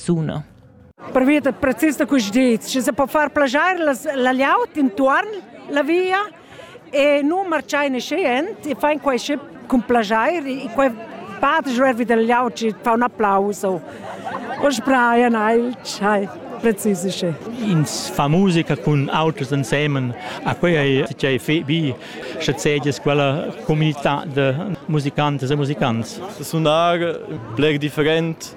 suna. Pervia da precis da quest dets, sche se po far plagiar la liaut intuorn la via e nu marchai ne schient e fain quai sche cun plagiar e quai part jörvi dal liaut e fa un applaus o o sbraia neil schai precis sche ins fa musica cun auters ensemen a quei ei tgei fe bi sche seges quella comunità de musicantes e musicants sunar bler different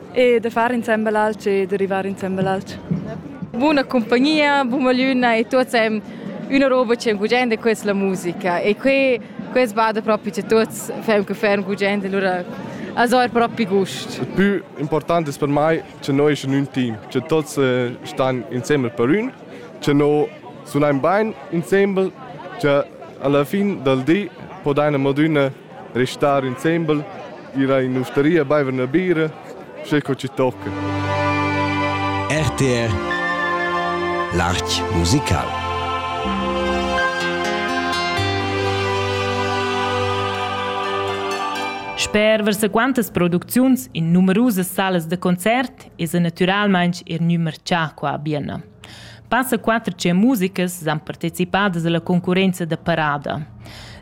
e da far insembel alch e da rivar insembel alch. Buna compagnia, buna luna e tuots hem üna roba che gugende questa la musica e que quest bada proprio che tuots fem che fem gugende allora also er proprio gust. Il più importante per me che noi in un team, che tutti eh, stanno insieme per un, che noi suoniamo bene insieme, che alla fine del di podem adüna Restar insembel, ira in ustaria baiver üna bira, sche co ci tocca. RTR L'Arch musical Sper versaquantas producziuns in numerusas salas da concert es el natüralmaing er gnü marchà qua a Bienna. Passa quatter tschient musicas san participadas alla concurrenza da parada.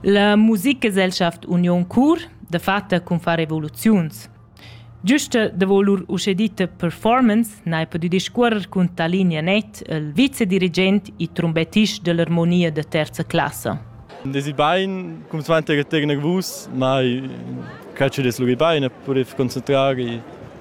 La Musikgesellschaft Union Chur dafatta cun far revoluziuns. Giusta davo lur uschè ditta performance n'hai pudü discuorrer cun Talinea Net, il vicedirigent e trumbettist dell'armonia da terza classa. Desi bain, cum svante che tegna vus, mai calci des lugi bain, e purif concentrari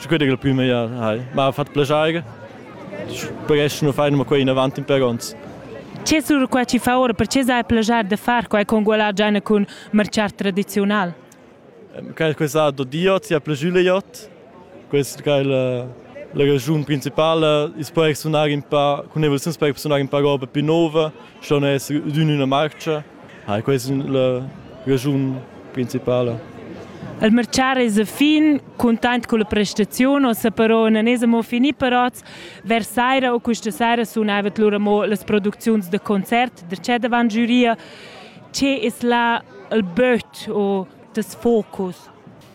sicur il plü meglier hai. M'ha fat plaschair. Presch nu fain ma quai inavant in per ons. Ce sur qua ci fa ora per ce sai plagiar de far quai con gualar giana cun marciar tradizional? Quel questa do diot sia plajule iot. Quest che la la ragiun principale is per sunar in pa con evoluzione per sunar in pa roba più nuova, schon essere in una marcia Ah, questa è la raschun principala. Il mercar es a fin, content con la prestazione, o se però non es amo fini parats, vers saira o questa saira sunava lura mo las producziuns de concert, de c'è davan giuria, che es la il böt o das focus.